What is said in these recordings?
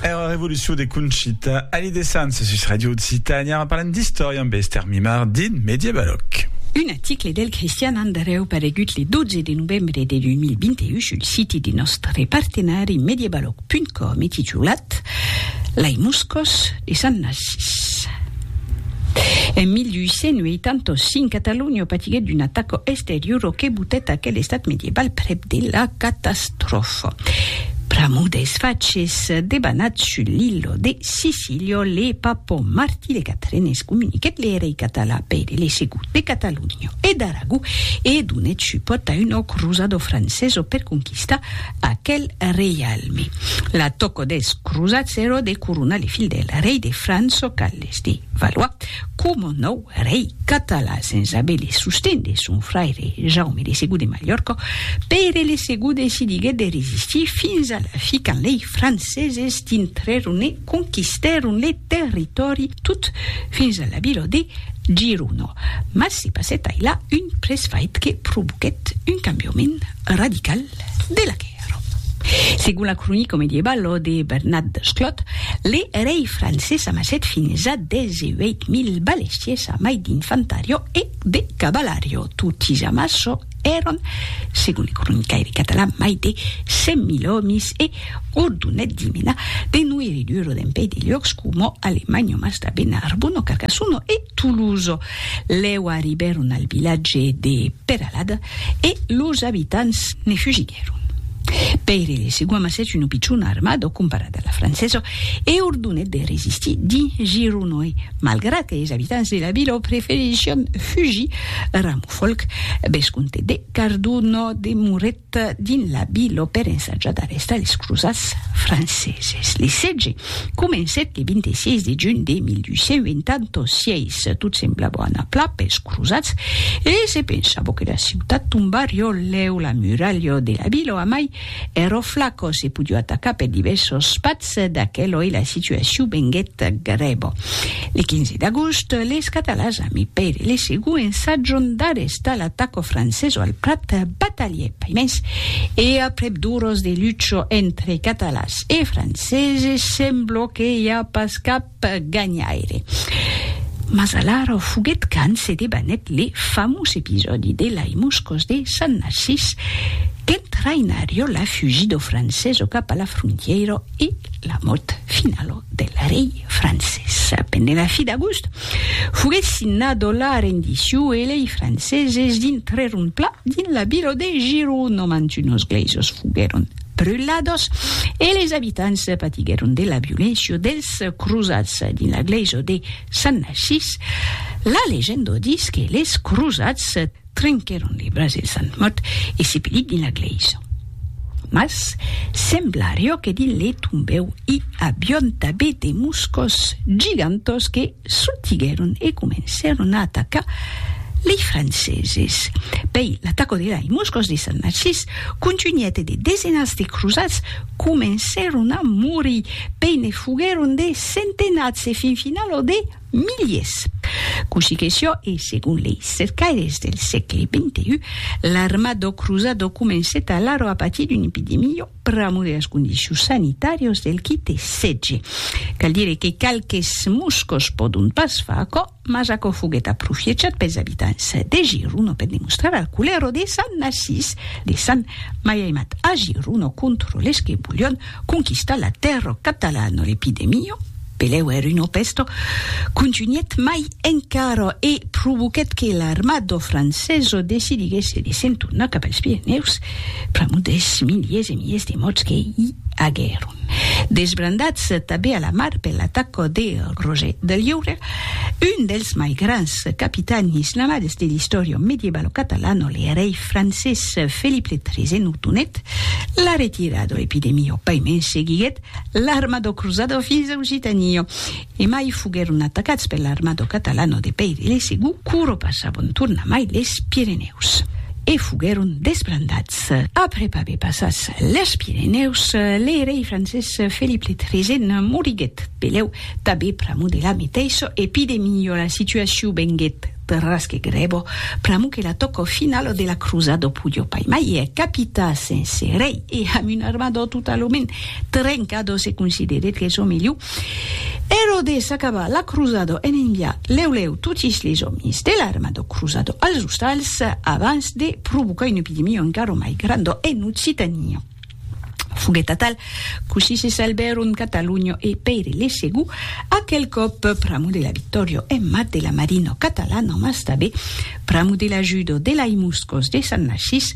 Era revolucion de Conchita Alí de Sants sus Radio Occitània en parlant d'istòria amb Esther Mimard dins Mediebaloc. Un article del Cristian Andreu paregut le 12 de novembre de 2021 sul siti de nòstre partenari mediebaloc.com e titulat Lei moscos de Sant Narcís. En 1885, Catalonha patiguèt d'una ataca exteriora que botèt aquel estat mediebal prèp de la catastròfa. Trof. Pramo des faches debanat sul l'illo de Sicilio le Papò Martí de Catrenes comuniquèt le rei català Pere le Segot de Catalonha e d'Aragó e donèt supòrt a un òc crosado franceso per conquistar aquel reialme. La tòco des crosats èro de coronar le fil del rei de França Carles de Valois coma nòu rei català sens aver le sosten de son fraire Jaume de Segur de Malhòrca, Pere le Segur decidiguèt de resistir fins a la fi quand lei franceses dintrèron e conquistèron le territòri tot fins a la vila de Girona. Mas se passèt ailà un presfait que provoquèt un cambiament radical de la quèrra. Segon la cronica medievalo de Bernat Desclot, le rei francés amassèt fins a 18.000 balestiers amai d'infantario e de cavalario. Toti amasso èran, segon le cronicaire catalan, mai de 100.000 òmis e ordonèt d'i menar de noirridur dempuèi de luòcs coma Alemagno, Mastabèna, Arbona, Carcassono e Toulouse. Lèu arribèron al vilatge de Peralada e los abitants ne fugiguèron. Pèire de Segua amassèt una pichona armada comparada a la francesa e ordonèt de resistir dins Gironòi, malgrat que es abitants de la vila preferission fugir. Ramofolc, vescomte de Cardona, demorèt Dins la Vila per ensajar d'arrestar es crosats franceses. Le sètge comencèt le 26 de junh de 1886. Tot semblava anar plan pels crosats e se pensava que la ciutat tombarió lèu la muralha de la Vila amai ero flaco se podió atacar per divèrsos patz. Mas d'aqueloi la situacion venguèt grèva. Le 15 d'agost, les Catalans a mi Pere le Segú ensatjon d'arrestar l'ataco franceso al Prat, batalhèt pas mens e aprèp d'oras de lucha entre Catalans e Franceses, sembla que i a pas cap ganhaire. Mas alara o foguet quand se debanèt le famós episòdi de lai Moscòs de Sant Narcís, qu'en traïnarió la fugit do francés o cap a la frontièira e la mòrt finalo del rei francés. Pendent la fi d'agost, foguet signado la rendiciu e lei franceses dintrèron pla dins la vila de Girona, mantunos gleisos foguèron brulados e les abitants patiguèron de la violéncia dels crosats dins la glèisa de Sant Narcís. La legenda ditz que les crosats trenquèron le braç del Sant mòrt e se pelit dins la glèisa. Mas semblarió que dins le tombèu i avión tabé de moscos gigantós que Sortiguèron e comencèron a atacar lei Franceses. Pei l'ataco de lei Moscòs de Sant Narcís contunhèt e de desenats de crosats comencèron a morir, pei ne foguèron de centenats e fin final ò de miliers. Cossí que sió e segon lei cercaires del sègle XXI, l'arma dò crosat ò comencèt alara a patir d'una epidemia. pr'amor de las condicions sanitàrias del qui te setge. Cal dire que qualques moscos pòdon pas far aquò, mas aquò foguèt aprofiechat pels abitants de Giruno per demostrar al culero de Sant Narcís de Sant Maiaimat a Giruno contra les que volion conquistar la terra catalana, l'epidemia, Peleu er uno pesto contunhèt mai encara e provoquèt que l'armada francesa decidiguèsse de se'n tornar cap als Pirenèus pr'amor dels miliers e miliers de mòrts que i aguèron. Desbrandats tanben a la mar per l'ataca de Roger de Lliure, un dels mai grands capitans islamades de l'istòria medievalo catalana, le rei francés Felip le Tresèn ordonèt la retirada. L'epidemia, paimens, seguiguèt l'armado cruzado fins au Gitanillo, e mai foguèron atacats per l'armado catalano de Pèir e de Segú, quora passabon tornamai les Pirenèus, e foguèron desbrandats. Après aver passats les Pirenèus, le rei francés Felip le Tresèn moriguèt, pelèu, tanben pr'amor de la meteissa, e pi de milhor la situacion venguèt. Perrasque grebo, pr'amo que la tòco finalo de la crosa do pudjo pai mai e capita sense rei e amb un armador totalament trenca do se considerèt que çò melhor ero de s'acabar la crosa do en enviar lèu lèu totis les òmis de l'arma do crosa do als ostals abans de provocar un epidemio encaro mai grando en Occitania. Foguèt atal, cossí se salbèron Cataluño e Pèire le Segú, aquel còp pr'amo de la Victòrio e mat de la Marino Catalano, mas tabé pr'amo de l'ajudo de lai Muscos de Sant Narcís,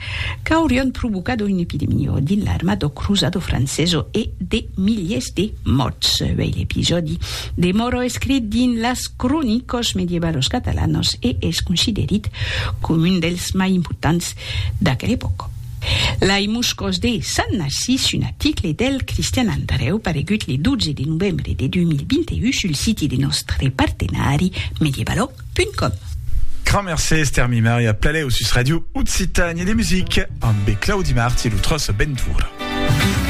qu'aurion provocado un epidemio dins l'armado cruzado franceso e de miliers de mòrts. Vei l'episòdi de Moro escrit dins las Cronicos Medievalos Catalanos e es considerit com un dels mai importants d'aquel epòca. Lai Moscòs de Sant Narcís, un article del Cristian Andrèu paregut le 12 de novembre de 2021 sul siti de nòstre partenari medievalo.com. Grand mercé Esther Mimari a Plaléu sus Radio Occitanie de Musique amb Claudi Marti lo tros Bentura.